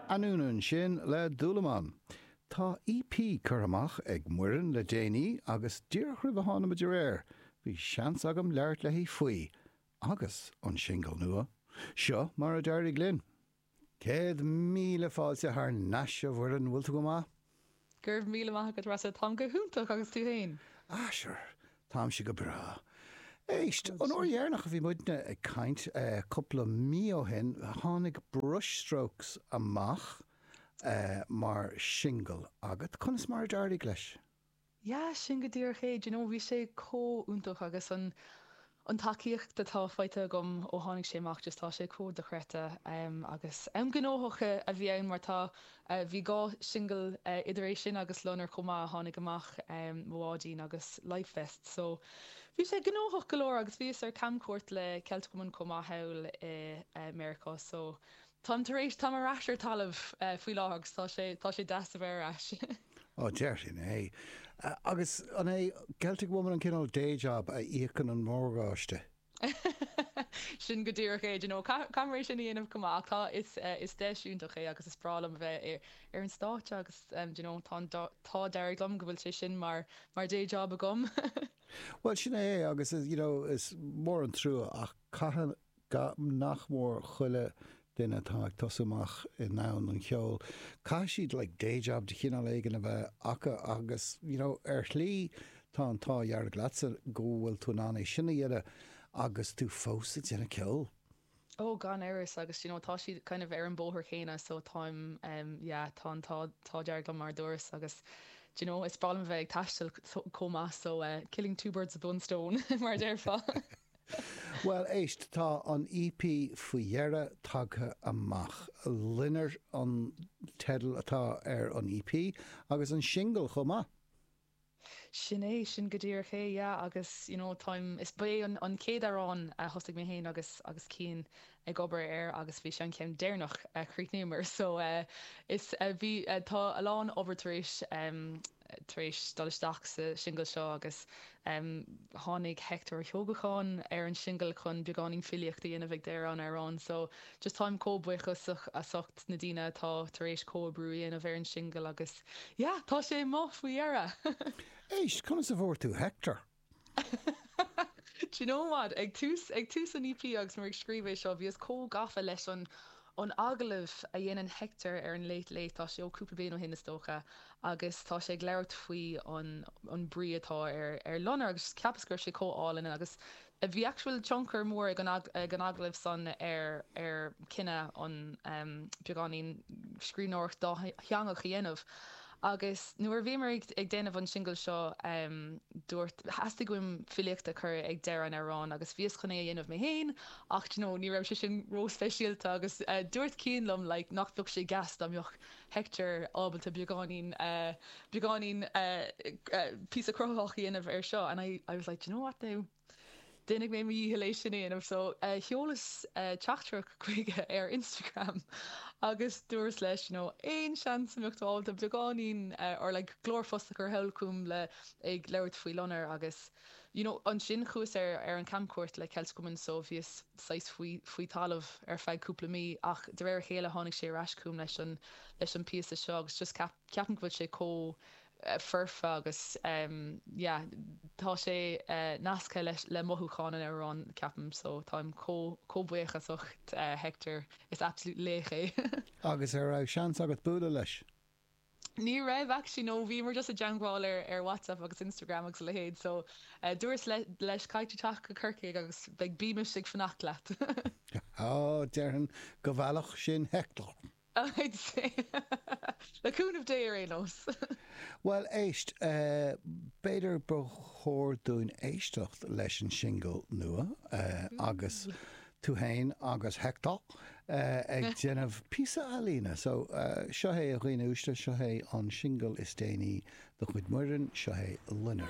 An ionann sin le dúlamán? Tá EP curtha amach ag Muireann le déanaí agus díreach roimh a tháinig muid ar aer, bhí seans agam labhairt léi faoi, agus an singil nua. Seo mar a d'éirigh linn. Céad míle fáilte thar nais a Mhuireann, bhfuil tú go maith? Go raibh míle maith agat, Rossa. Táim go hiontach, agus tú féin? Ah, sure, táimse go breá. Éist, an uair dheireanach a bhí muidne ag caint, cúpla mí ó shin, tháinig Brushstrokes amach mar shingil agat. Conas mar a d'éirigh leis? Yeah, sin go díreach é. Do you know, bhí sé chomh iontach agus an, an tacaíocht atá faighte agam ó tháinig sé amach, just tá sé chomh dochreidte. Em, agus, em gnóthach a, a bhí ann mar tá, eh, bhí dhá singil eh idir é sin agus Loinnir chomh maith a tháinig amach, em, Mo Bháidín agus Life Vests. So, bhí sé gnóthach go leor agus bhíos ar camchuairt le Celtic Woman chomh maith thall i, eh, Meiriceá. So, Táim tar éis, táim ar ais ar talamh faoi láthair agus tá sé, tá sé deas a bheith ar ais. Á, déarfainn é. Agus an é Celtic Woman an cineál day job a íocann an morgáiste? Sin go díreach é, do you know, caithfear é sin a dhéanamh chomh maith. Ach tá, is, is deis iontach é agus is breá liom a bheith ar, ar an stáitse agus do you know, tá an, tá, d'éirigh liom go bhfuil sé sin mar, mar day job agam. Bhuel, sin é é agus is, you know, is mór an trua ach caithfidh, Go nach mór chuile duine atá ag tosú amach i ndomhan an cheoil, caithfidh siad like day job de chineál éigin a bheith acu agus you know ar shlí tá an t-ádh dhearg leatsa go bhfuil tú in ann é sin a dhéanamh agus tú fós ag déanamh ceoil. Oh gan amhras agus d'you know tá siad kind of ar an bóthar chéanna so táim em yeah tá an t-ádh dearg liom mar a dúrais agus d'you know is breá liom a bheith ag taisteal chomh maith so eh killing two birds with one stone mar a déarfá. Bhuel, éist, tá an EP faoi dheireadh tagtha amach. 'Loinnir' an teideal atá ar an EP, agus an singil chomh maith. Sin é, sin go díreach é, yeah, agus, you know, táim, is, ba é an chéad amhrán a thosaigh mé féin agus, agus Cian ag obair air agus bhí sé an ceann deireanach a chríochnaíomar so is bhí tá a lán obair tar éis tar éis dul isteach sa singil seo agus tháinig Hector Ó hEochagáin ar an singil chun beagáinín filíocht a dhéanamh ag deireadh an amhráin so just táim comh buíochasach as ucht na daoine atá tar éis comhoibriú a dhéanamh ar an singil agus yeah tá sé amach faoi dheireadh! Éist, conas a bhfuair tú Hector? Do you know what? Ag tús, ag tús an EP agus mé ag scríobh é seo, bhíos chomh gafa leis an, an agallamh a dhéanann Hector ar an Late Late, tá sé ó cúpla bliain ó shin is dócha, agus tá sé ag labhairt faoi an, an brí atá ar, ar loinnir agus cheapas go raibh sé chomh álainn agus bhí actual tionchar mór ag an, ag an agallamh san ar, ar chinneadh, ehm, beagáinín scríbhneoireacht dátheangach a dhéanamh. Agus nuair a bhíomar ag déanamh an singil seo, dúirt, theastaigh uaim filíocht a chur ag deireadh an amhráin agus bhíos chun é a dhéanamh mé féin ach do you know, ní raibh sé sin ró-speisialta agus dúirt Cian liom like nach bheadh sé deas dá mbeadh Hector ábalta beagáinín, beagáinín píosa cruthaitheach a dhéanamh air seo and I, I was like, do you know what now? Déanfaidh mé mo dhícheall é sin a dhéanamh. So, sheolas teachtaireacht chuige ar Instagram agus dúras leis, you know, aon seans a mbeadh tú ábalta beagáinín or like glórphost a chur sall chugam ag labhairt faoi loinnir agus, you know, ansin chuas ar ar an camchuairt le Celt Cumann so bhíos saghas faoi faoi thalamh ar feadh cúpla mí ach de réir a chéile tháinig sé ar ais chugam leis an leis an bpíosa seo agus just ceap ceapaim go bhfuil sé chomh foirfe agus yeah tá sé nasctha leis le mothúcháin an amhráin ceapaim so táim chomh chomh buíoch as ach Hector is absolute laoch é. Agus an raibh seans agat bualadh leis? Ní raibh actually no bhíomar just ag teagmháil ar ar WhatsApp agus Instagram agus a leithéid so dúras leis caithfidh tú teacht go Corcaigh agus beidh bímis ag fanacht leat. Á, déarfainn go bhfeilfeadh sin Hector. I'd say, le cúnamh Dé ar aon nós! Bhuel, éist, b'fhéidir ba chóir dúinn éisteacht leis an singil nua agus tú fhéin agus Hector ag déanamh píosa ealaíne. So, seo é, a dhaoine uaisle, seo é an singil is déanaí de chuid Muireann, seo é Loinnir.